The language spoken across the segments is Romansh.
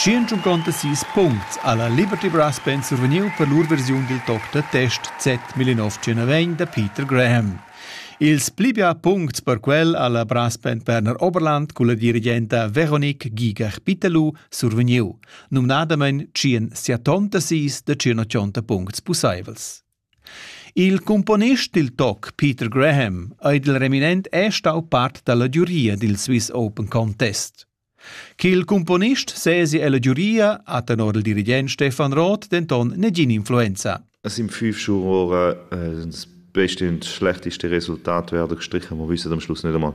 Tschient-unconta sis puncts ha la Liberty Brass Band survegniu per lur versiun dil toc da test Z1901 da Peter Graham. Ils pli bia puncts per quel ha la Brass Band Berner Oberland culla dirigenta Veronique Gigach-Pittelù survegniu, numnadamein tschien siatonta sis da tschien ochonta puncts pusseivels. Il cumponist dil toc Peter Graham ei dil reminent è stau part dalla giuria dil Swiss Open Contest. Ch'il cumponist sesi ella giuria ha tenor il dirigent Stefan Roth denton negin influenza. Es im fünf Schuhe ora, äh, das beste und schlechteste Resultat werden gestrichen. Wir wissen am Schluss nicht einmal,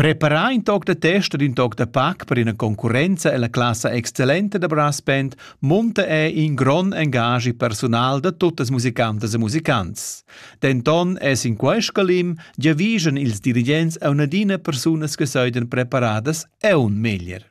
Preparà in toc da test ed in toc da pac per ina concurrenza ella classa excellenta da brass band munta è in grond engaschi persunal da tuttas musicantas e musicants. Denton è sin quest scalim giavischan ils dirigents a un'adina persunas che soidan preparadas e un meglier.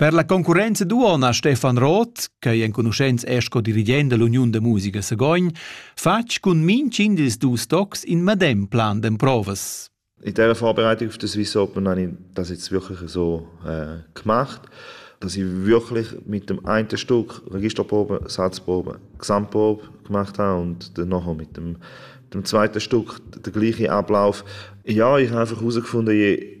Per la concurrenza duonna Stefan Roth, ch'ei enconuschents è sco dirigent dall'Uniun da musica Sagogn, fatg cun minchin dils dus tocs in medem plan d'emprovas. In dieser Vorbereitung auf das Viso Open habe ich das jetzt wirklich so äh, gemacht, dass ich wirklich mit dem einen Stück Registerprobe, Satzprobe, Gesamtprobe gemacht habe und dann nachher mit dem, dem zweiten Stück den gleichen Ablauf. Ja, ich habe einfach herausgefunden, je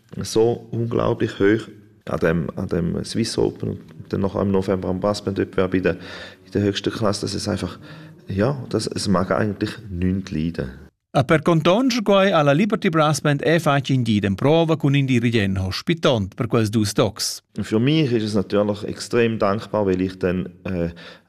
so unglaublich hoch an dem an dem Swiss Open und dann noch im November am Basketball bei der in der höchsten Klasse das ist einfach ja das es mag eigentlich nichts leiden A per contonge quai ha la Liberty Brass Band è facin di den prova cun in dirigent hospitant per quels dus docs. Für mich ist es natürlich extrem dankbar, weil ich dann äh,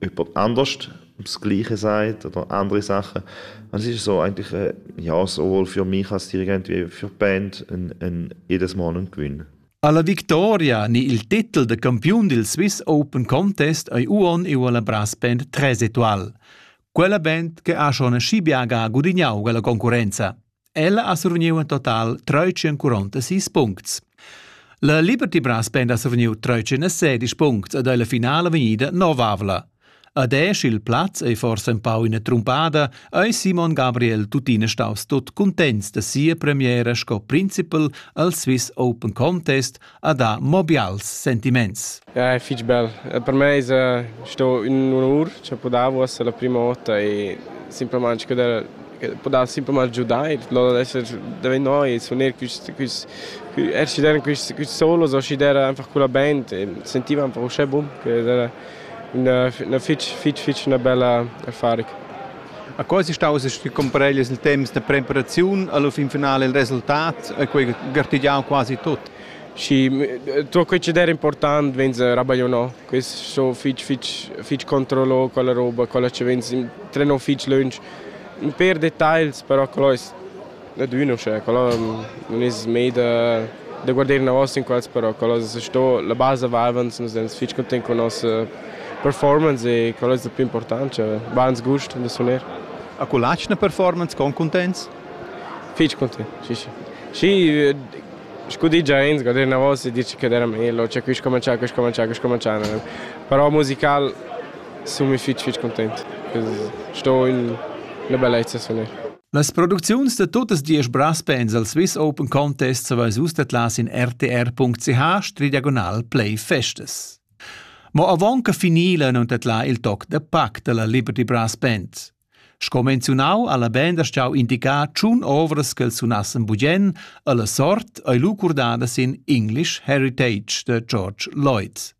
jemand anders das Gleiche sagt oder andere Sachen. Und es ist so eigentlich, äh, ja, sowohl für mich als Dirigent wie für die Band ein, ein jedes Mal ein Gewinn. Alla victoria ni il titel de campiun del Swiss Open Contest ei uon e la brass band Tresetoal. Quella band che ha schon scibiaga gudignau la concurenza. Ella ha survgniu in total treutschenquaronta sis puncts. La Liberty Brass Band ha survgniu treutschenasedisch puncts ed ei la finala vegnida novavla. Ad esch il plaz ei forsa empau ina trumpada, ei Simon Gabriel tuttina staus tut cuntents da sia premiera sco principal al Swiss Open Contest a dar mo bials sentiments. Ja, è fitg bel. Per me es sto ün onur cha po davo esser la prima vota e simplamaing che podar simplamain giudar e daventare e suonare quist quist er scidere quist quist solo so scidere einfach con la band e sentiva einfach uschè bun che era üna fich fich fich üna bella affari. A quai es staus compareglias il temps da preparaziun alla fin finala il resultat, quei gartegiau quasi tut. Sì, tutto quel che era important venza rabaglionò. Quest so fich fich fich controllò quella roba, quella che venza trenò fich lunch. Un per dettagls, però quello es da dunna uschè, quella nun es mei da da guarder inavos inquals, però quella es sto la basa vivans, nus ins fich content cun nossa performance e quella es da plü important, cioè bains gust da suner. A cu l'atgna performance con cuntents? Fich content, sì sì. Schi scu di già ins, guarder inavos e dir che era meglio, cioè quist comincià, quist comincià, quist comincià, però musical sun mi fich fich content, sto in 'na bellezza suner. Las producziuns da tuttas diesch braspens al Swiss Open Contest saveis vus tetlas in rtr.ch play festas. Mo avon che finila non tetla il toc da pac dalla Liberty Brass Band. Sco menziunau alla band ha stau indicar tschun ovras che els sunassen bugen alla sort ei lucurdada sin English Heritage de George Lloyd.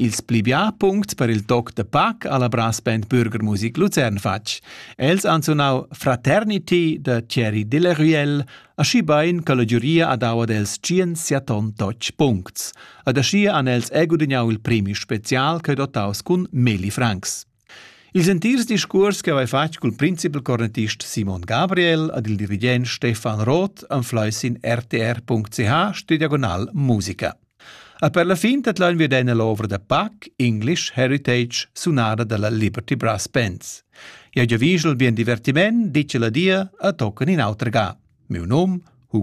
Ils pli bia puncts per il toc da pac ha la brassband Bürgermusik Luzern fatg. Els han sunau Fraternity da Thierry Delaruelle, aschi bein che la giuria ha dau ad els tschien siaton totg puncts. Ad aschia han els egudignau il premi special ch'ei dotaus cun milli francs. Ils entirs discuors che haveva fatg cul principal cornettist Simon Gabriel ad il dirigent Stefan Roth anflai sin rtr.ch stiu diagonal musica. A per la fin tadlaun wir dena l'ovra da Pac English Heritage sunada dalla Liberty Brass Bands. Ja giavigel bien divertiment, dice la dia, a tocan in auter ga. Miu num